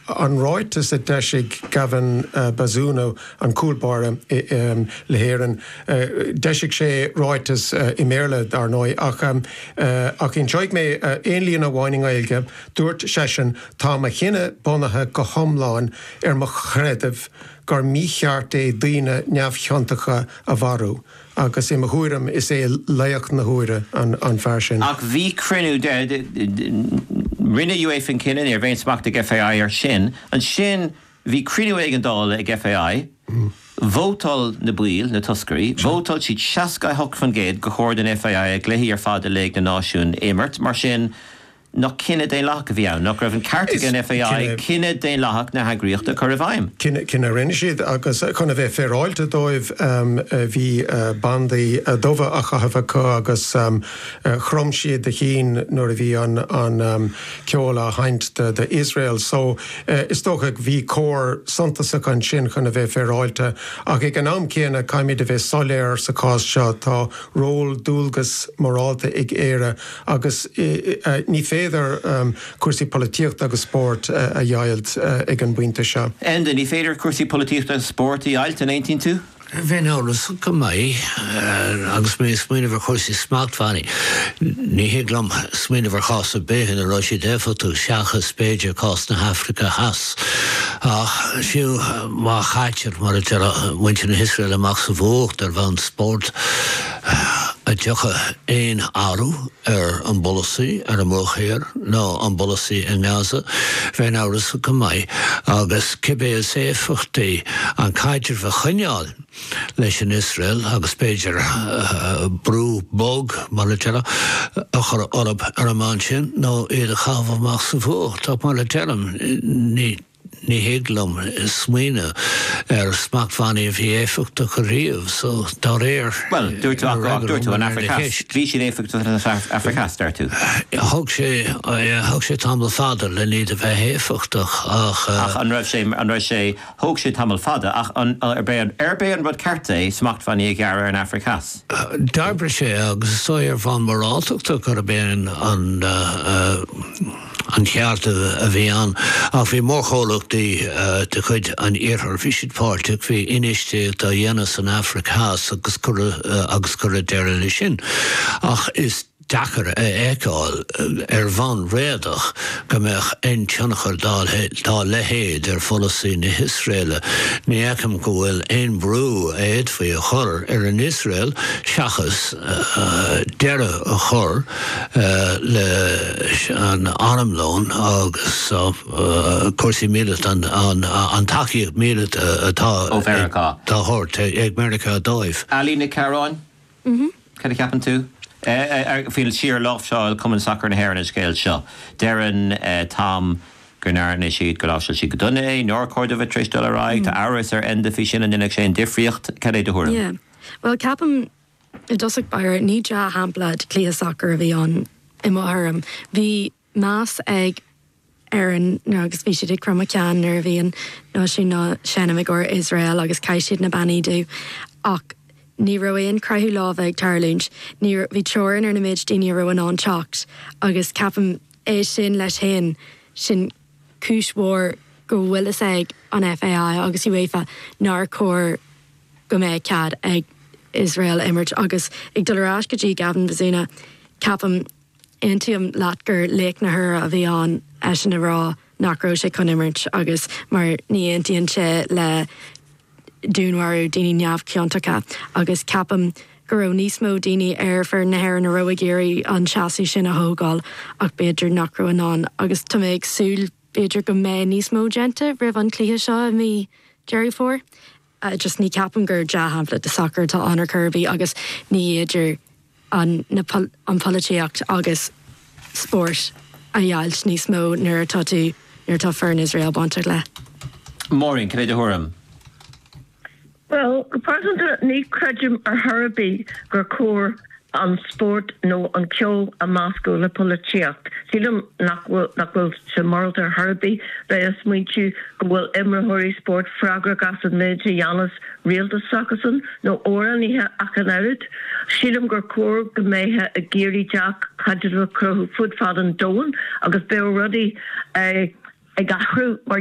an ráiteas a d'eisigh Gavin Bazunu, an cúl báire le hÉirinn, d'eisigh sé ráiteas i mBéarla, dar ndóigh, ach ach inseoidh mé aon líne amháin i nGaeilge, dúirt seisean, Tá mo chinneadh bunaithe go hiomlán ar mo chreideamh gur mícheart é daoine neamhchiontacha a mharú. Agus i mo thuairim, is é laoch na huaire an fear sin. Ach bhí cruinniú de, rinne UEFA an cinneadh, ní raibh aon smacht ag FAI air sin. Ansin bhí cruinniú éigeandála ag FAI, vótáil na baill, na toscairí, vótáil siad 68% gur chóir don FAI a gcluichí ar fad i Léig na Náisiún a imirt, mar sin, Nach cinneadh daonlathach a bhí ann? Nach raibh an ceart ag an FAI cinneadh daonlathach na heagraíochta a chur i bhfeidhm? Cinneadh a rinne siad, agus chun a bheith féaráilte dóibh, bhí bandaí dubha á chaitheamh acu agus chrom siad a gceann nuair a bhí an ceol á sheinnt d'Iosrael. Só, is dócha, bhí comhartha suntasach ansin chun a bheith féaráilte. Ach ag an am céanna, caithfimid a bheith soiléir sa chás seo, tá ról, dualgas morálta ag Éire, Agus ní féidir cúrsaí polaitíochta agus spóirt a dheighilt ag an bpointe seo. Enda, Ní féidir cúrsaí polaitíochta agus spóirt a dheighilt, an aontaíonn tú? Bheinn amhrasach go maith, agus mé ag smaoineamh ar chúrsaí smachtbhannaí. Ní thig liom smaoineamh ar chás ar bith ina raibh siad éifeachtach, seachas b'fhéidir cás na hAfraice Theas. Ach fiú má chaitear, mar a deir muintir na hIosraeile, amach sa bhfuacht ar bhonn spóirt, a dtiocfadh aon athrú ar an bpolasaí ar an mBruach Thiar nó an bpolasaí i nGaza, bheinn amhrasach go maith, agus cibé is éifeachtaí an caidreamh a choinneáil leis an Iosrael agus b'fhéidir brú bog, mar a déarfá, a chur orthu ar an mbonn sin nó iad a chaitheamh amach sa bhfuacht, ach mar a deirim, ní. Ní thig liom smaoineamh ar smachtbhannaí a bhí éifeachtach ariamh so, dá réir. Bhuel, dúirt tú, ach dúirt tú an Afraic Theas, bhí siad éifeachtach san Afraic Theas, deir tú. Thóg sé, thóg sé tamall fada len iad a bheith éifeachtach ach. Ach an raibh sé, an raibh sé, thóg sé tamall fada ach an, arbh é, arbh é an rud ceart é smachtbhannaí a ghearradh ar an Afraic Theas? D'oibrigh sé agus is dóigh ar bhonn moráltachta gurb é an. an ceart a bhí ann, ach bhí mórchomhlachtaí de chuid an Iarthair, bhí siad páirteach, bhí infheistíocht á dhéanamh san Afraic Theas agus cuireadh, agus cuireadh deireadh leis sin. Ach is deacair a fheiceáil, ar bhonn réadach, go mbeadh aon tionchar dá leithéid ar pholasaí na hIosraeile. Ní fheicim go bhfuil aon brú a fhéadfaí a chur ar an Iosrael seachas deireadh a chur, leis an armlón agus cúrsaí míleata, an tacaíocht mhíleata atá á tabhairt ag Meiriceá dóibh. Ailín Nic Cearáin, Cad a cheapann tú faoin slí ar láimhseáil Cumann Sacair na hÉireann an scéal seo? Deireann Tom go ndearna siad, go láimhseáil siad go dona é, nár chóir dóibh a bheith tar éis dul ar aghaidh. Tá amhras ar Enda faoi sin, an ndéanfadh sin difríocht? Cad é do thuairim? Yeah, bhuel ceapaim. I dtosach báire, ní dea-shampla de chluiche sacair a bhí ann i mo thuairim. Bhí meas ag Éirinn agus bhí siad ag cromadh ceann nuair a bhí an náisiún á sheinm i gcomhair Iosrael agus chaith siad na bandaí dubha. Ach ní raibh aon croitheadh lámha ag tarlúint. Ní raibh, bhí teorainn ar na méid daoine a raibh in ann teacht agus ceapaim, é sin leis féin, sin cúis mhór go bhfuil fhios ag an FAI agus UEFA nár chóir go mbeadh cead ag Iosrael imirt agus ag dul ar ais go dtí Gavin Bazunu, ceapaim, aontaím leat gur laoch na huaire a bhí ann eisean a rá nach raibh sé chun imirt agus mar ní aontaíonn sé le dúnmharú daoine neamhchiontacha agus ceapaim go raibh níos mó daoine ar foireann na hÉireann a raibh ag iarraidh an seasamh sin a thógáil ach b'fhéidir nach raibh in ann agus tá mé ag súil b'fhéidir go mbeidh níos mó déanta roimh an cluiche seo i mí Deireadh Fómhair. Just ní ceapaim gur dea-shampla de sacar atá ann ar chor ar bith agus ní fhéidir an na an polaitíocht agus spórt a dheighlt níos mó nuair atá tú nuair atá foireann Iosrael bainteach le. Máirín, cad é do thuairim? Bhuel, go pearsanta ní chreidim ar chor ar bith gur cóir an spórt nó an ceol a mheascadh le polaitíocht. Sílim nach bhfuil sé morálta ar chor ar bith bheith ag smaointiú go bhfuil imreoirí spóirt freagrach as an méid a dhéanas rialtas s'acusan, nó amhránaithe ach an oiread. Sílim gur chóir go mbeifeá ag iarraidh dea-chaidrimh a chruthú fud fad an domhain agus bheadh rudaí ag athrú mar